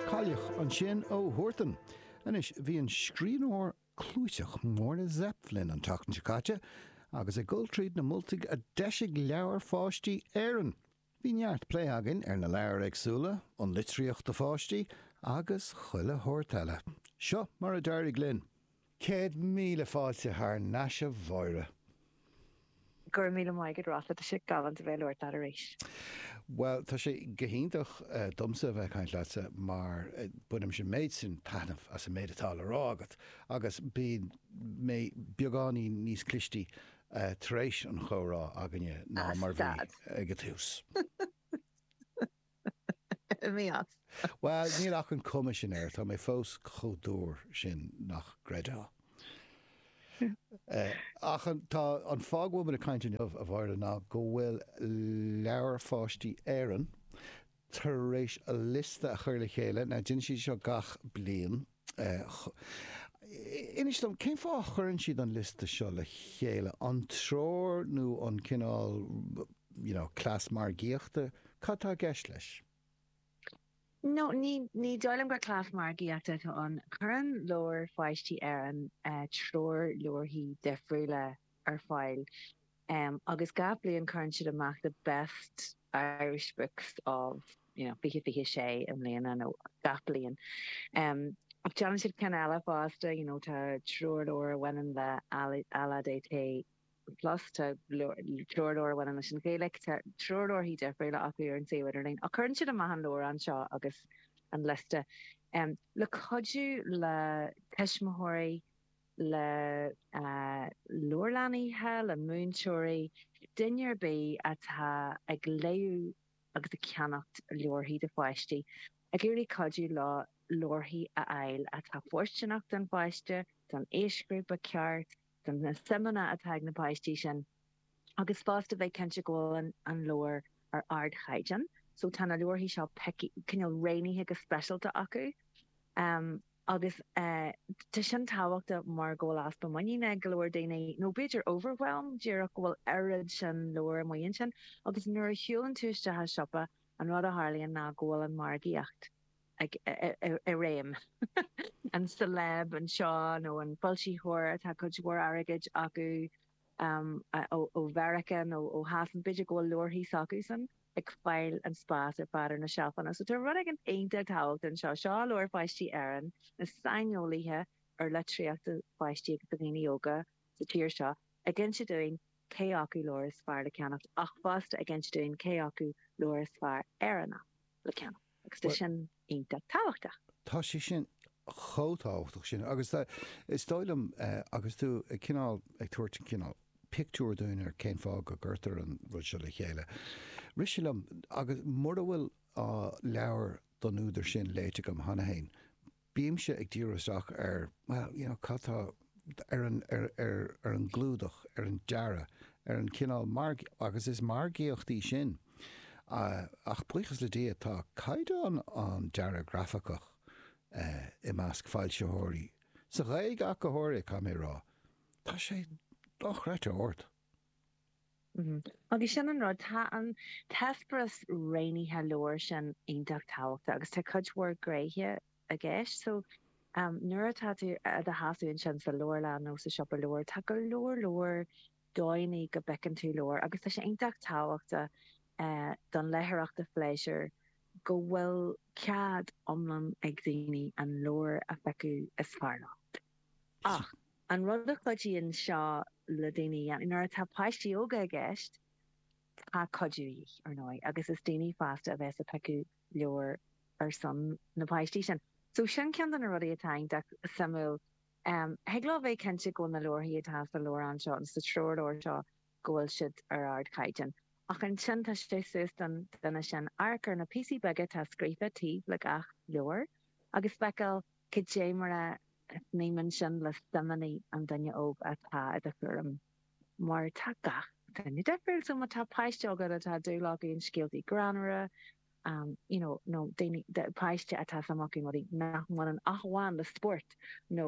Kayleigh ansin ó Huartan. Anois, bhí an scríbhneoir clúiteach Máire Zepf linn an tseachtain seo caite agus ag dul tríd na moltaí a d'eisigh Leabhair Pháistí Éireann. Bhí neart plé againn ar na leabhair éagsúla, an litríocht do pháistí agus chuile shórt eile. Seo mar a d'éirigh linn. Céad míle fáilte thar nais a Mháire. Go raibh míle maith agat Ola, tá sé galánta bheith ag labhairt leat arís. Bhuel, tá sé go hiontach domsa a bheith ag caint leatsa mar bainimse an méid sin taitneamh as an méid atá le rá agat agus bíonn mé beagáinín níos clistí tar éis an chomhrá againne ná mar a bhí ag an tús. Mí-ádh. Bhuel, níl ach an cuma sin air, tá mé fós chomh dúr sin nach gcreidfeá. Ach an fáth go bhfuil muid ag caint inniu, a Mháire, ná go bhfuil Leabhair Pháistí Éireann tar éis a liosta a chur le chéile, now déanann siad seo gach bliain, Inis dom, cén fáth a chuireann siad an liosta seo le chéile? An treoir nó an cineál, you know, cleas margaíochta? Cad atá i gceist leis? No, ní dóigh liom gur cleas margaíochta atá ann. Cuireann leabhair pháistí Éireann treoirleabharthaí difriúla. ar fáil agus gach bliain cuireann siad amach the best Irish books of, you know, 2026 i mbliana nó gach bliain. Ach déanann siad cinn eile fosta, you know, tá treoirleabhar a bhaineann le LADT Plus, tá treoirleabhar a bhaineann leis an Ghaeilge, tá treoirleabharthaí difriúla acu ar an suíomh idirlín. Ach cuireann siad amach an leabhrán seo agus an liosta le cuidiú le tuismitheoirí, le leabharlannaithe, le múinteoirí, duine ar bith atá ag léamh agus ag ceannacht leabharthaí do pháistí, ag iarraidh cuidiú leo leabharthaí a fháil atá fóirsteanach don pháiste, don aoisghrúpa ceart, do na suimeanna atá ag na páistí sin. Agus fosta bheith cinnte go bhfuil an leabhar ar ardchaighdeán. So tá na leabharthaí seo cineál roghnaithe go speisialta acu. Agus tá sin tábhachtach mar go bhfuil easpa muiníne ag go leor daoine, nó b'fhéidir overwhelm díreach, go bhfuil oiread sin leabhar amuigh ansin. Agus nuair a shiúlann tú isteach i siopa, an rud a tharlaíonn ná go bhfuil an mhargaíocht i réim. An celeb anseo nó an foilsitheoir atá cuid mhór airgid acu, ó Mheiriceá nó ó Shasana, b'fhéidir go bhfuil leabharthaí s'acusan ag fáil an spás ar fad ar na seilfeanna. So tá rud éigin iontach tábhachtach anseo. Seo Leabhair Pháistí Éireann, na saineolaithe ar litríocht do pháistí agus do dhaoine óga sa tír seo ag inse dúinn cé acu leabhar is fearr le ceannacht ach fosta ag inse dúinn cé acu leabhar is fearr Éireannach le ceannacht. Agus tá sin iontach tábhachtach. Tá sé sin chomh tábhachtach sin. Agus is dóigh liom, agus tú cineál ag tabhairt cineál pictiúr dúinn ar cén fáth go gcuirtear an rud seo le chéile, rith sé liom, agus mura bhfuil leabhar ón údar sin léite agam cheana féin, Bímse ag díriú isteach ar, bhuel, you know, cad tá, ar an, ar, ar, ar an gclúdach, ar an dearadh, ar an chineál marg, agus is margaíocht í sin. Ach buíochas le Dia, tá caighdeán an dearaidh ghrafaicigh i measc foilsitheoirí, sa Ghaeilge ach go háirithe, caithfidh mé a rá, tá sé dochreidte ard. Agus sin an rud, tá an t-eispéireas roghnaithe leabhair sin iontach tábhachtach agus tá cuid mhór gnéithe i gceist. So, nuair atá tú i do sheasamh ansin sa leabharlann nó sa siopa leabhar, tá go leor leor dóigheanna go bpiocann tú leabhar agus tá sé iontach tábhachtach don leitheoireacht ar phléisiúr go bhfuil cead iomlán ag daoine an leabhar a phiocadh is fearr leo. Ach. An rud a chuidíonn seo le daoine a dhéanamh, nuair atá páistí óga i gceist, tá cuidiú de dhíth, ar ndóigh, agus is daoine fásta a bheas ag piocadh leabhar ar son na bpáistí sin. So sin ceann de na rudaí atá iontach suimiúil. Thig leo a bheith cinnte go bhfuil na leabharthaí atá sa leabhrán seo, nó sa treoirleabhar seo, go bhfuil siad ar ardchaighdeán. Ach ansin tá sé suas don duine sin amharc ar na píosaí beaga atá scríofa taobh le gach leabhar agus feiceáil, Caidé mar a shníomhann sin le suimeanna an duine óg atá i do chúram? Mar tá gach duine difriúil, so má tá páiste agat atá dúil acu i scéaltaí greannmhara, you know, nó daoine, páiste atá suim acu i rudaí nach mbaineann ach amháin le spórt nó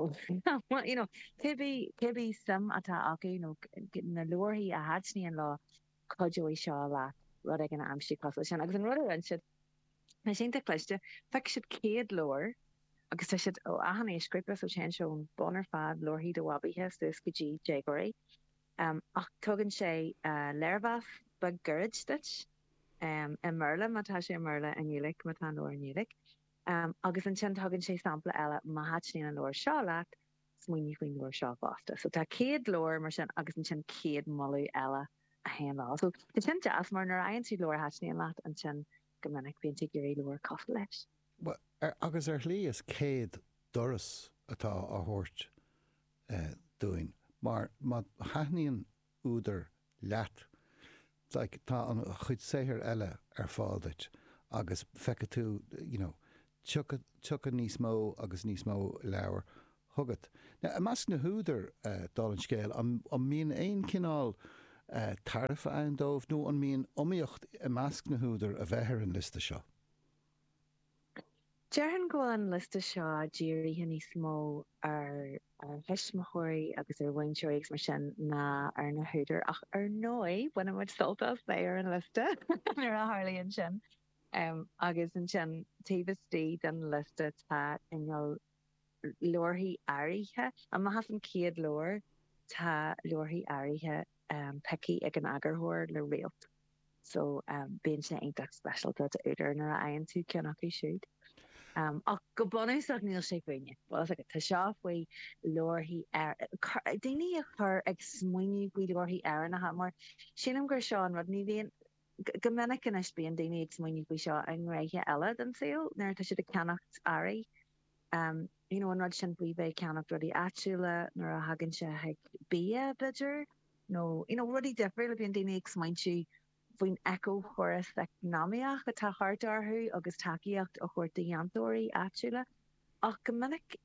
you know, cibé suim atá acu nó na leabharthaí a thaitníonn leo, cuideoidh seo leat rud éigin a aimsiú cosúil leis sin. Agus an rud a rinne siad, atá iontach cliste, phioc siad 100 leabhar agus tá siad ó achan aoisghrúpa, so téann sé ón mbun ar fad, leabharthaí do bhabaithe, suas go dtí déagóirí. Ach tugann sé léirmheas beag gairid duit, i mBéarla má tá sé i mBéarla, i nGaeilge má tá an leabhar i nGaeilge, agus ansin tugann sé sampla eile, má thaitníonn an leabhar seo leat, smaoineamh faoin leabhar seo fosta. So tá 100 leabhar mar sin agus ansin 100 moladh eile a théann leo. So tá sin deas mar nuair a fhaigheann tú leabhar a thaitníonn leat ansin go minic bíonn tú ag iarraidh leabhar cosúil leis. Bhuel, agus ar shlí is 100 doras atá á thabhairt dúinn mar má thaitníonn údar leat, like, tá an chuid saothair eile ar fáil duit agus feicfidh tú, you know, tiocfaidh, tiocfaidh níos mó agus níos mó leabhar chugat. Now, i measc na n-údar, dála an scéil, an, an mbíonn aon chineál tairbhe ann dóibh nó an mbíonn iomaíocht i measc na n-údar a bheith ar an liosta seo? Déarfainn go bhfuil an liosta seo dírithe níos mó ar thuismitheoirí agus ar mhúinteoirí agus mar sin ná ar na húdair, ach ar ndóigh bainimid sult as bheith ar an liosta nuair a tharlaíonn sin. Agus ansin taobh istigh den liosta tá, i ngeall, leabharthaí áirithe. Amach as an chéad leabhar tá leabharthaí áirithe pioctha ag an eagarthóir le réalt. so bíonn sé iontach speisialta d'údar nuair a fhaigheann tú ceann acu siúd. Ach go bunúsach níl sé fúinne. Tá seo faoi leabharthaí, daoine a chur ag smaoineamh faoi leabharthaí Éireannacha mar sílim gur seo an rud, ní bhíonn, go minic anois bíonn daoine ag smaoineamh faoi seo i ngnéithe eile den saol nuair atá siad ag ceannacht earraí. you know an rud sin faoi bheith ag ceannacht rudaí áitiúla nuair a thagann sé chuig bia b'fheidir nó you know rudaí difriúla, bíonn daoine ag smaointiú faoin eiceachóras eacnamaíoch atá thart orthu agus tacaíocht a thabhairt do dhéantóirí áitiúla ach go minic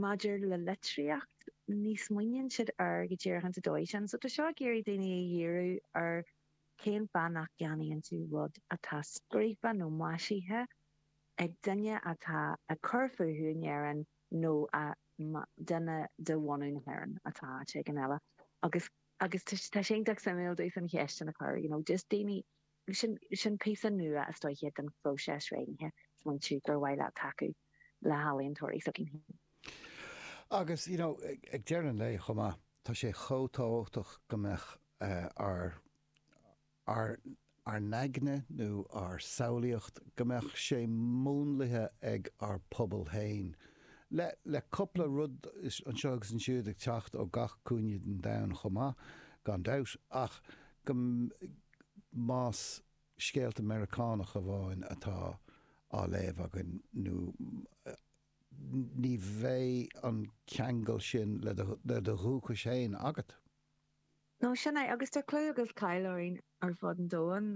maidir le litríocht ní smaoiníonn siad air go díreach ar an dóigh sin so tá seo ag iarraidh daoine a dhíriú ar cén fáth nach gceannaíonn tú rud atá scríofa nó maisithe ag duine atá ag cur fúthu in Éirinn nó a duine de bhunadh na hÉireann atá áit éigin eile agus agus tá sé iontach suimiúil just an cheist sin a chur you know just daoine sin sin píosa nua isteach den phróiseas smaointithe smaointiú gur mhaith leat tacú le healaíontóirí s'againn féin. Agus you know ag deireadh an lae chomh maith tá sé chomh tábhachtach go mbeadh ár ár n-aigne nó ár samhlaíocht, go mbeadh sé múnlaithe ag ár bpobal féin. Le, le cupla rud anseo agus ansiúd ag teacht ó gach cúinne den domhan chomh maith, gan dabht, ach go, más scéalta Meiriceánacha amháin atá á léamh againn nó ní bheidh an ceangal sin le do, le do dhúchas féin agat. Nó sin é, agus tá clú agus cáil orainn ar fud an domhain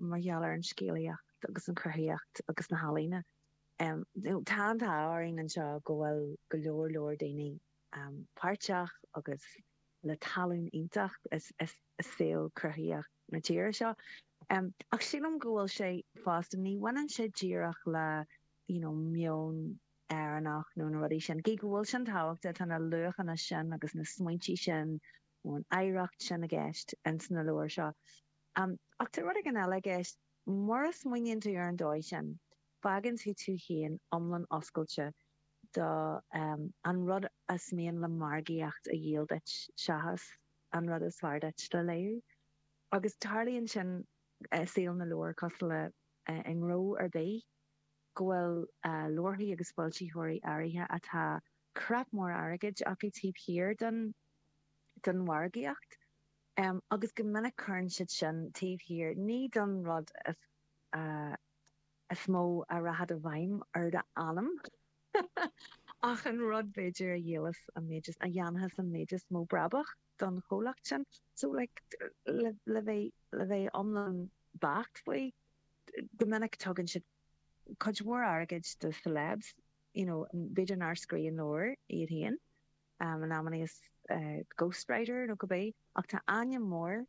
mar gheall ar an scéalaíocht agus an chruthaitheacht agus na healaíona. Tá an t-ádh orainn anseo go bhfuil go leor leor daoine páirteach agus le talann iontach i saol cruthaitheach na tíre seo. Ach sílim go bhfuil sé fosta, ní bhaineann sé díreach le meon, Éireannach nó na rudaí sin. Gí go bhfuil sin tábhachta, tá na luachanna sin agus na smaointe sin ón oidhreacht sin i gceist ins na leabhair seo. Ach tá rud éigin eile i gceist. Mura smaoiníonn tú ar an dóigh sin, fágann tú tú féin iomlán oscailte do an rud is mian le margaíocht a dhíol duit seachas an rud is fearr duit le léamh. Agus tarlaíonn sin i saol na leabhar cosúil le i ngnó ar bith. go bhfuil leabharthaí agus foilsitheoirí áirithe atá cnap mór airgid acu taobh thiar den den mhargaíocht agus go minic cuireann siad sin taobh thiar ní don rud is mó a rachaidh i bhfeidhm ar d'anam ach an rud b'fhéidir a dhíolfas an méid is a dhéanfas an méid is mó brabach don chomhlacht sin. So like le bheith le bheith iomlán beacht faoi, Go minic tugann siad cuid mhór airgid do celebs, you know, b'fhéidir nár scríobh an leabhar iad féin, in amannaí is ghost writer nó cibé, ach tá ainm mór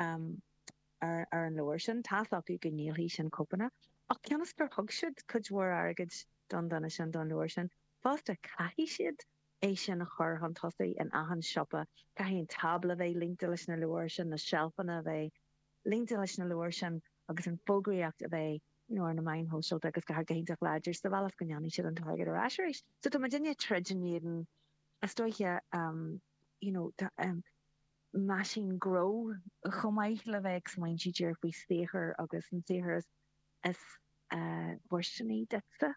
ar an leabhar sin, tá's acu go ndíolfaidh sin cóipeanna, ach cionn is gur thug siad cuid mhór airgid don duine sin, don leabhar sin, fosta caithfidh siad é sin a chur chun tosaigh in achan siopa, caithfidh an tábla a bheith líonta leis na leabhair sin, na seilfeanna a bheith líonta leis na leabhair sin. agus an fógraíocht a bheith ar na meáin shóisialta agus go han-iontach láidir sa bhealach is go ndéanfaidh siad an t-airgead ar ais arís. So tá muid i ndiaidh troid in éadan, is dóiche, you know, tá an meaisín gnó chomh maith le bheith ag smaointiú díreach faoi saothar agus an saothar is fóirsteanaí duitse,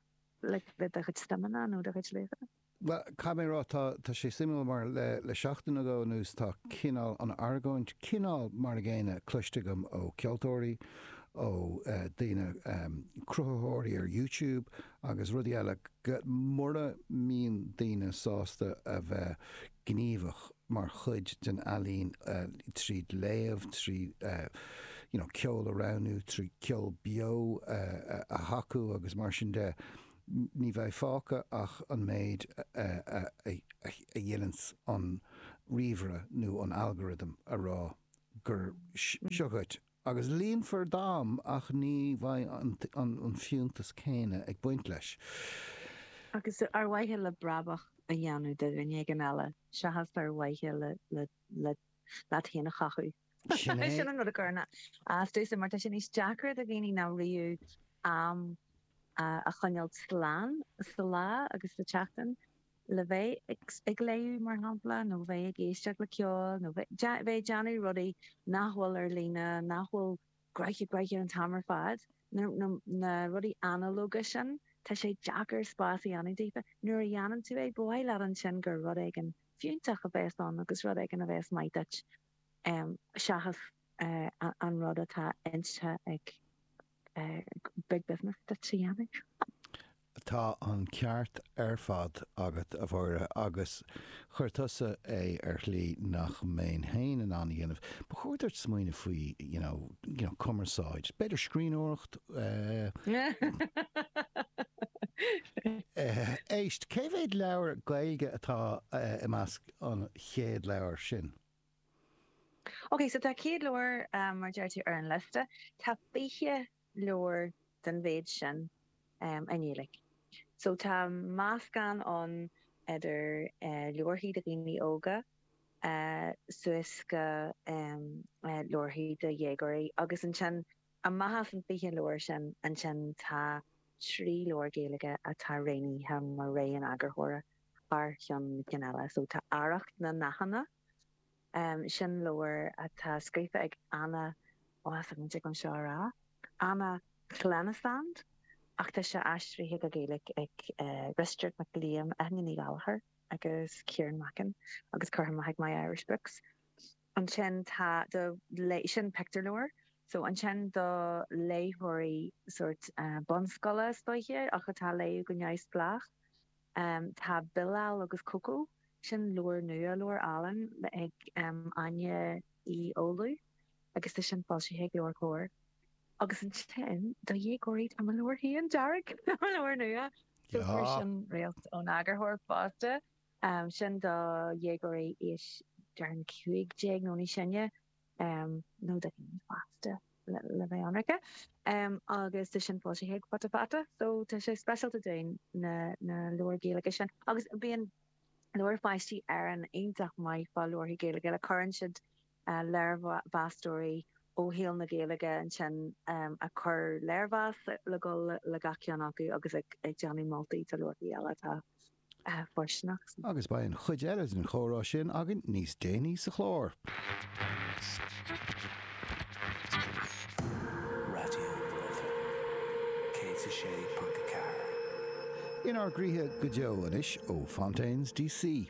like le do chuid suimeanna nó do chuid luachanna. Caithfidh mé a rá, tá sé suimiúil mar le seachtain nó dhó anuas tá cineál an argóint cineál mar an gcéanna cloiste agam ó cheoltóirí, ó daoine, cruthaitheoirí ar YouTube agus rudaí eile go mura mbíonn daoine sásta a bheith gníomhach mar chuid den ealaín trí léamh, trí you know ceol a roghnú, trí ceol beo a thacú agus mar sin de, Ní bheidh fágtha ach an méid a dhéananns an ríomhaire nó an algorithm a rá gur seo dhuit, agus líonfar d'am ach ní bheidh an fiúntas céanna ag baint leis. Agus ar mhaithe le brabach a dhéanamh do dhuine éigin eile seachas ar mhaithe leat féin a chothú. Sin an rud a chuireann as domhsa, mar tá sé níos deacra do dhaoine ná riamh am a choinneáil slán sa lá agus sa tseachtain le bheith ag léamh, mar shampla, nó bheith ag éisteacht le ceol, nó bheith ag déanamh rudaí nach bhfuil ar líne, nach bhfuil gnoitheach gnoitheach an t-am ar fad, na rudaí analóga sin. Tá sé deacair spás a dhéanamh daofa. Nuair a dhéanann tú é, ba mhaith leat ansin gur rud éigin fiúntach a bheas ann agus rud éigin a bheas maith duit. seachas an rud atá inste ag Big Business duit a dhéanamh. Tá an ceart ar fad agat, a Mháire, agus chuir tusa é ar shlí nach mbeinn féin in ann a dhéanamh. Ba chóir duit smaoineamh faoi, you know, you know, cumarsáid, b'fhéidir scríbhneoireacht, eh. Éist, cé mhéad leabhar Gaeilge atá i measc an chéad leabhar sin. OK, so tá 100 leabhar, mar a deir tú, ar an liosta. Tá 20 leabhar den mhéid sin i nGaeilge. So tá meascán ann idir leabharthaí do dhaoine óga suas go leabharthaí do dhéagóirí. Agus ansin, amach as an 20 leabhar sin, ansin tá trí leabhar Gaeilge atá roghnaithe mar rogha an eagarthóra. thar cheann na cinn eile so tá Arracht na nDathanna, sin leabhar atá scríofa ag Anna, ó tá muid ag, anseo a rá, Anna Llenas ach tá sé aistrithe go Gaeilge ag Risteard Mac Liam, Eithne Ní Ghallchobhair agus Ciarán Mackin agus curtha amach ag My Irish Books. Ansin tá do léith, sin pictiúrleabhar so ansin do léitheoirí sórt bunscoile is dóiche ach atá ag léamh go neamhspleách, Tá Bilal agus Coco, sin leabhar nua, leabhar álainn ag Áine Uí Fhoghlú agus tá sin foilsithe ag LeabhairCOMHAR. Agus ansin do dhéagóirí tá mo leabhar féin, Dearg, mo leabhar nua, so fuair sin réalt ón eagarthóir fosta, sin do dhéagóirí aois, déarfainn, 15 nó níos sine. nó de dhaoine fásta le bheith ionraice, agus tá sin foilsithe ag Futa Fata, so tá sé speisialta don leabhair Ghaeilge sin. Agus bíonn Leabhair Pháistí Éireann iontach maith fá leabharthaí Gaeilge, like cuireann siad léirmheastóirí ó shaol na Gaeilge ansin a chur léirmheas le dul le gach ceann acu agus ag déanamh moltaí de leabharthaí eile atá fóirsteanach. Agus beidh an chuid eile den chomhrá sin againn níos déanaí sa chlár. Inár gcroíthe go deo anois ó Fontaines D.C.